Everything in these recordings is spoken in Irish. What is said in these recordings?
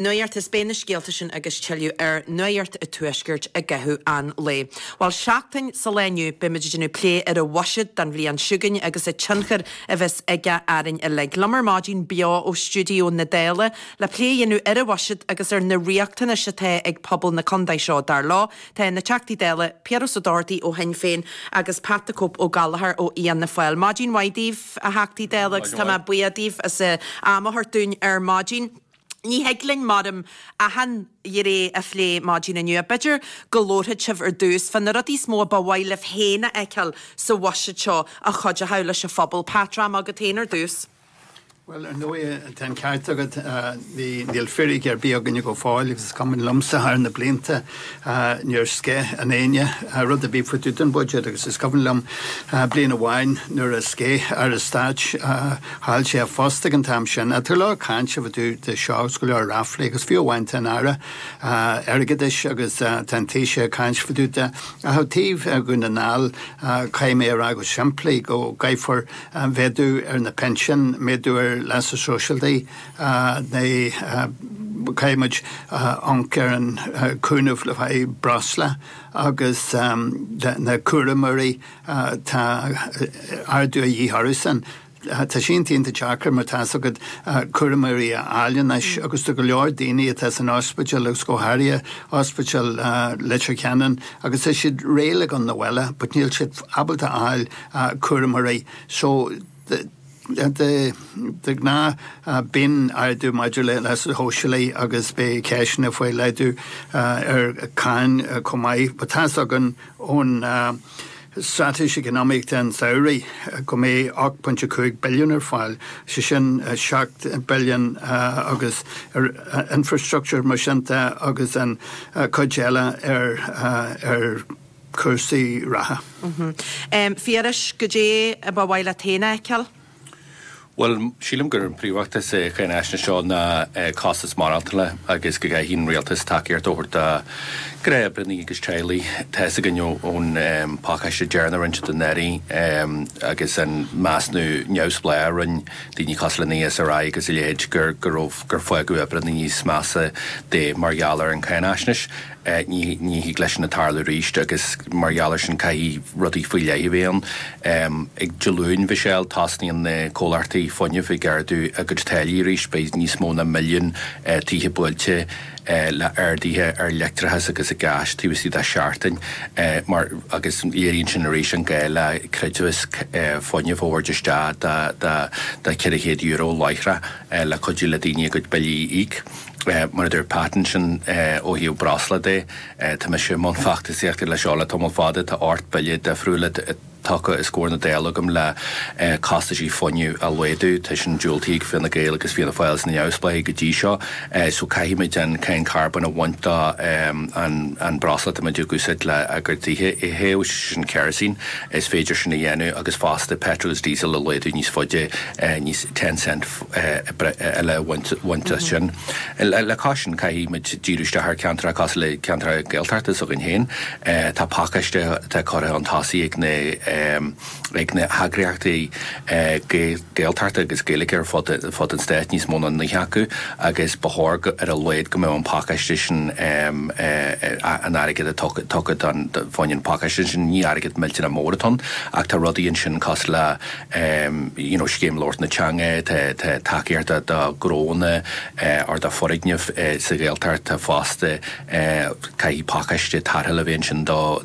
Nuacht is beidh na scéalta sin agus tuilleadh ar Nuacht an Tuaiscirt i gcaitheamh an lae. Bhuel, seachtain sa lá inniu, beidh muid ag déanamh plé ar an bhuiséad don bhliain seo chugainn agus an tionchar a bheas aige orainn uilig. Liom ar maidin, beo ó stiúideo na Dála, le plé a dhéanamh ar an bhuiséad agus ar na riachtanais atá ag pobal na contae seo, dar leo, tá na Teachtaí Dála, Piaras Ó Dochartaigh ó Shinn Féin agus Pat 'The Cope' Ó Gallchóir ó Fhianna Fáil. Maidin mhaith daoibh, a Theachtaí Dála, agus tá mé buíoch daoibh as am a thabhairt dúinn ar maidin. Ní thig linn maram achan ghné a phlé maidin inniu. B'fhéidir go labharfaidh sibh ar dtús fá na rudaí is mó a ba mhaith libh féin a fheiceáil sa bhuiséad seo a chuideochadh leis an phobal. Pat, dream agat féin ar dtús. Bhuel, ar ndóighe, tá an ceart agat. Níl firic ar bith againne go fóill agus is cuimhin liomsa thar na blianta, Níor sceith éinne rud ar bith fá dtaobh den budget agus is cuimhin liom bliain amháin nuair a sceith Aire Stáit, chaill sé a phost ag an t-am sin, tá go leor cainte fá dtaobh de seo is go leor ráflaí agus fiú amháin tá an Aire Airgeadais agus tá an Taoiseach ag caint fá dtaobh de ach ó taobh Dhún na nGall caithfidh mé a rá go simplí go gcaithfear méadú ar na pinsin, méadú ar leasa sóisialta. Caithfidh muid amhanc ar an chúnamh le haghaidh breosla agus na cúramóirí. Tá ardú a dhíth orthusan. Tá sé iontach deacair mar tá's agat cúramóirí a fháil anois agus tá go leor daoine atá san ospidéal agus go háirithe ospidéal Leitir Ceanainn agus tá siad réidh le gabháil chun an bhaile but níl siad ábalta a fháil cúramóirí. So. de ghnáth bíonn ardú maidir le leasa shóisialaigh agus beidh ceisteanna faoi laghdú ar cháin chomh maith. Ba tá's againn ón Straitéis Eacnamaíochta an tsamhraidh go mbeidh 8.5 billiún ar fáil, sé sin 7 billiún agus ar infreastruchtúr mar sin de agus an chuid eile ar cúrsaí reatha. Phiarais, Goidé a ba mhaith leat féin a fheiceáil? Bhuel, sílim gur an príomhfhócas sa cháinaisnéis seo ná costas maireachtála agus go gcaithfidh an rialtas tacaíocht a thabhairt do ghnáthoibreannaí agus teaghlaigh. Tá fhios againn ón pacáiste deireanach a rinneadh dáiríre agus an measnú neamhspleáach a rinne daoine cosúil le an ESRI agus a leithéid gur fágadh oibreannaí níos measa de mar gheall ar an cháinaisnéis. Ní thig leis sin tarlú arís agus mar gheall air sin caithfidh rudaí faoi leith a bheith ann. Dé Luain, a Mhichelle, tosnaíonn na comhlachtaí fuinnimh ag ardú a gcuid táillí arís. Beidh níos mó ná milliún tithe buailte le arduithe ar leictreachas agus gás taobh istigh de sheachtain mar agus léiríonn sin arís an gá le creidmheas fuinnimh a thabhairt isteach de €400 láithreach le cuidiú le daoine a gcuid billí a íoc. Mar a dúirt Pat ansin ó thaobh breosla de. Tá mise i mbun feachtasaíochta leis seo le tamall fada. Tá ocht mbille difriúil tugtha os comhair na Dála agam le costaisí fuinnimh a laghdú. Tá sin diúltaithe ag Fine Gael agus Fianna Fáil is na neamhspleáigh go dtí seo. So caithfimid an cáin carbóin a bhaint den bhreosla atá muid ag úsáid le tithe a théamh, sé sin kerosene. Is féidir sin a dhéanamh agus fosta petrol is diesel a laghdú níos faide, níos ten cent, eile a bhaint as sin. Le cois sin, caithfidh muid díriú isteach ar cheantracha cosúil le ceantracha Gaeltachta s'againn féin. Tá pacáiste atá curtha chun tosaigh ag na heagraíochtaí Gaeltachta agus Gaeilge ar fud an stáit, níos mó ná 9 acu, agus ba chóir ar a laghad go mbeadh an pacáiste sin, an airgead atá tugtha dó, faoin phacáiste sin, ní airgead millteanach mór atá ann, ach tá rudaí ansin cosúil le, you know Scéim Labhairt na Teanga tá tacaíocht do ghnónna or do foirgnimh sa Ghaeltacht fosta caithfidh pacáiste tarrthála a bheith ansin do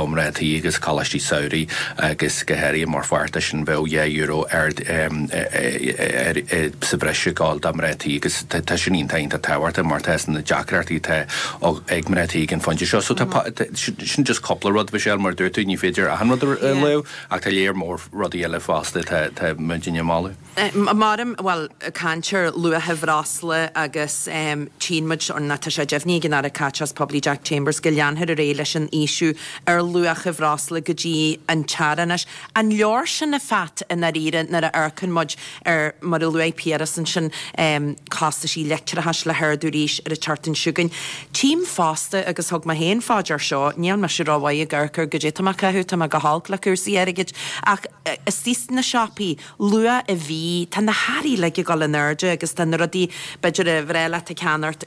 mhná tí agus coláistí samhraidh agus go háirithe mar pháirt de sin bheadh dhá euro ar sa bhreis ag dul do mhná tí agus tá sin iontach iontach tábhachtach mar tá's againn na deacrachtaí atá ag mná tí ag an phointe seo so tá sin just cúpla rud Michelle mar dúirt tú ní féidir achan rud a lua Ach tá léar mór rudaí eile fosta atá muidinne a mholadh. Muraim, bhuel, caint ar luacha bhreosla agus tchíonn muid, or tá sé deimhnithe ag an Aire Caiteachais Poiblí Jack Chambers go leanfar ar aghaidh leis an ísliú ar luacha bhreosla go dtí an t-earrach anois. An leor sin a Pheait, i ndáiríre, nuair a amharcann muid ar mar a luaigh Piaras ansin, costais leictreachais le hardú arís ar an tseachtain seo chugainn. Tchím fosta, agus thug mé féin fá dear é seo, níl mise rómhaith ag amharc ar caidé, tá mé ag caitheamh, tá mé go holc le cúrsaí airgid, ach istigh sna siopaí, luach an bhídh, tá na hearraí uilig ag gabháil in airde agus tá na rudaí, b'fhéidir ar bhreá leat a cheannacht,